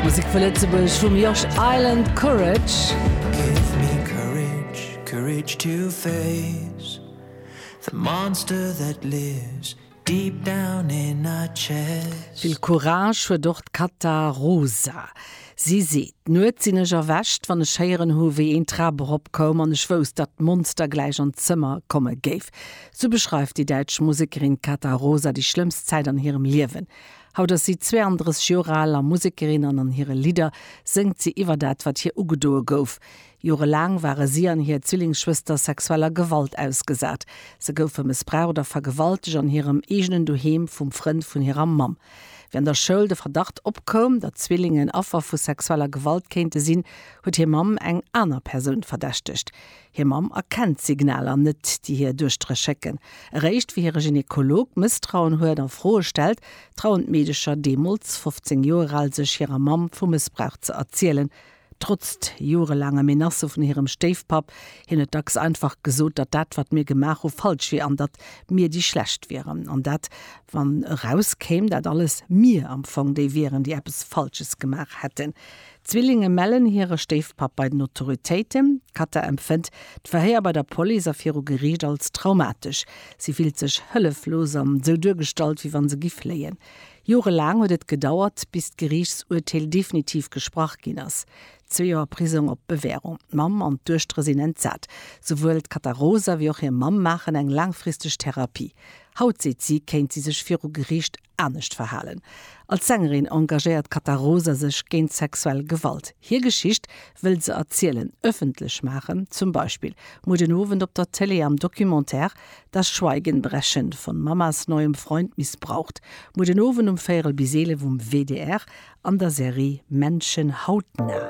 Musek vu Lëtzebuerg vum Josh Island, Courage. Vill Courage huet och d'Kata Rosa. Si seet, Nuets sinn ech erwächt, wann ech héieren hu wéi een d'Trap erop koum an ech wousst, datt d'Monster gläich an d'Zëmmer komme géif. Sou beschreift déi däitsch Musekerin d'Kata Rosa déi schlëmmst Zäit an hirem Liewen. Haut ass si 32 Joer al a Musekerin an an hire Lidder séngt si iwwer dat, wat hir ugedoe gouf. Jorelaang ware si an hir Zwillingsschwëster sexueller Gewalt ausgesat. Se goufe mëssbraucht oder vergewaltegt an hirem eegenen Doheem vum Frënd vun hirer Mamm. Wéi an der Schoul de Verdacht opkoum, datt d'Zwillingen Affer vu sexueller Gewalt kéinte sinn, huet hir Mamm eng aner Persoun verdächtegt. Hir Mamm erkennt d'Signaler net, déi hir Duechtere schécken. Eréischt wéi hire Gynekolog Mësstrauen huet a Froe stellt, trauen d'Meedecher, deemools 15 Joer al, sech hirer Mamm vu Mëssbrauch ze erzielen. Trotzt jorelaange Menacë vun hirem Stéifpapp, hien huet dacks einfach gesot, datt dat, wat mir gemaach hu falsch wier an datt mir déi Schlecht wieren. An dat, wann erauskéim, datt alles mir am Fong déi wieren, déi eppes Falsches gemaach hätten. D'Zwillinge mellen hire Stéifpapp bei den Autoritéiten. D'Katha empfënnt d'Verhéier bei der Police a viru Geriicht als traumatesch. Si fillt sech hëlleflos an esou duergestallt, wéi wann se gi fléien. Jorelaang huet et gedauert, bis d'Geriichtsurteel definitiv gesprach ginn ass. Zwee Joer Prisong op Bewährung. D'Mamm an d'Duechtere sinn entsat. Souwuel d'Katha Rosa wéi och hir Mamm maachen eng laangfristeg Therapie. Haut, seet si, kéint si sech viru Geriicht anescht verhalen. Als Sängerin engagéiert d'Cata Rosa sech géint sexuell Gewalt. Hir Geschicht wëll se erzielen, ëffentlech maachen, zum Beispill muer den Owend op der Tëlee am Documentaire Das Schweigen brechen von Mamas neuem Freund missbraucht, muer den Owend um véierel bis eelef um WDR an der Serie Menschen hautnah.